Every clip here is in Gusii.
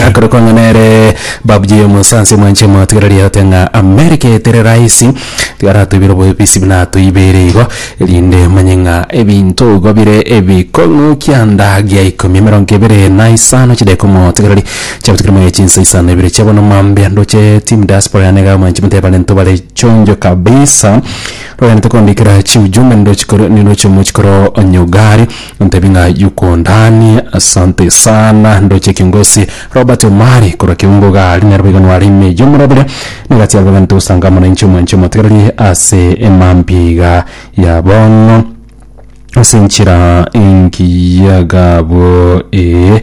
Akore kwang'a nere babuya oyo omonsansi omwanche mwatigira riote ng'a Amerika eye teri rahisi tiga aratoibere obobisi buna atoibeire igo erinde manye ng'a ebinto igo bire ebikong'u kianda gia ikomi emerongo ebere na isano chideka omotigereri chiabutigire moyo chinsa isano ibere chia bono mambia ndoche team diaspora yane iga omwanche motebe barento bare chonjo kabisa rogende tokondikera chiujumbe nirochikore nirochio mochikoro onyugari Ntebi ng'a Yukondani, asante sana. Ndoche kiongosi Robert Omari korwa Keungo Gari nero boigo nware ime eyio omorabire na egati yarwe egane togosanga mwananchi omwanche omotegererie ase emambi iga ya bono ase enchera engiya gabo ee.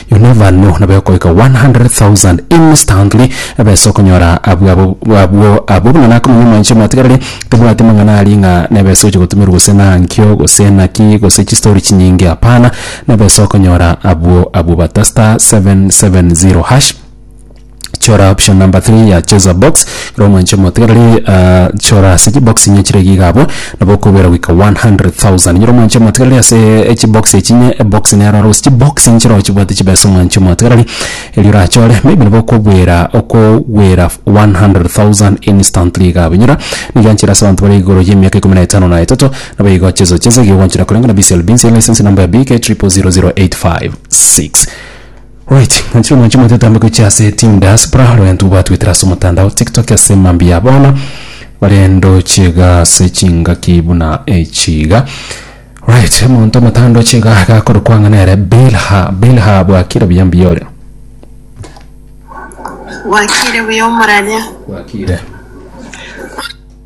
Inwe abanto nabo ekoika 100,000 instantly ebesa okonyora abwo abo abwo abwo buna nakomonya omwanche omwatigarire tebwati amang'ana aria ng'a nebesa ogocha gotumerwa gose nankio gose naki gose chistory chinyinge hapana nebesa okonyora abwo abwo bata *770#. chora option number three ya cheza box ekero omwancha omotegereri ah, chora ase chibox inye chire iga abwo nabo okobera goika 100000 nyora omwancha omotegereri ase echibox echi inye ebox nero aro gose chibox inche chiro chibwate chibesa omwancha omotegereri erio orachore maybe nabo okobwera okobwera 100000 instantly iga abwo nyora nigo enchera ase abanto bare igoro y'emiaka ikomi na etano na etato nabo igo cheza cheza iga ogoanchera koreng'ana BCLB nse license number ya BK triple zero zero eight five six Right, ng'anchire omonche omonto etambe gochia ase Team Diaspora ore gento gwatwetera ase omotandao TikTok ase mambia bono bare ndoche iga ase chingaki buna echi iga. Right, omonto omotaa ndoche iga iga akorokwa ng'a nere Bilha. Bilha bwakire buya mbuya ore. Bwakire buya omorania. Bwakire.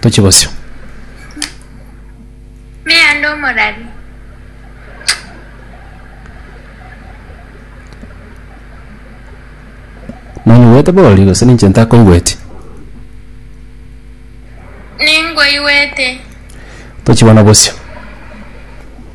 Tochie bosio. Meando omorari. Nonyigwete bori gose ninche ntakoigweti. Ningoigwete. Tochie bono bosio.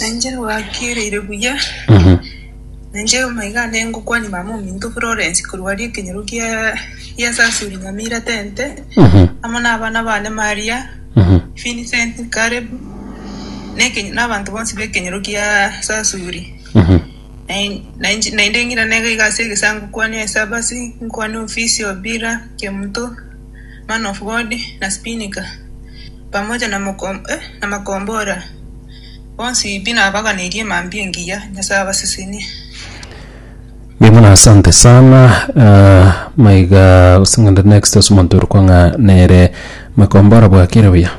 Na inche nabakeireire buya, na inche omaiga nde ngokwania mama ominto Florence korwa aria ekenyoro gia gia Sasuri Nyamira Tente, amo na abana bane Maria, Vincent, Caleb, na ekenyo na abanto bonsi b'ekenyoro gia Sasuri. Na in- na inche naende ng'ira nega iga ase egesaku nkwanie Esabasi, nkwane Ofisi Obira, Kemuto, man of God, na Spinika, pamoja na makombora, bonsi pi nabaganirie mambia engiya Nyasae abasesenie. Mbuya mono asante sana uh, maiga gose ngende next ase omonto ore kwang'a nere makombora bwakire buya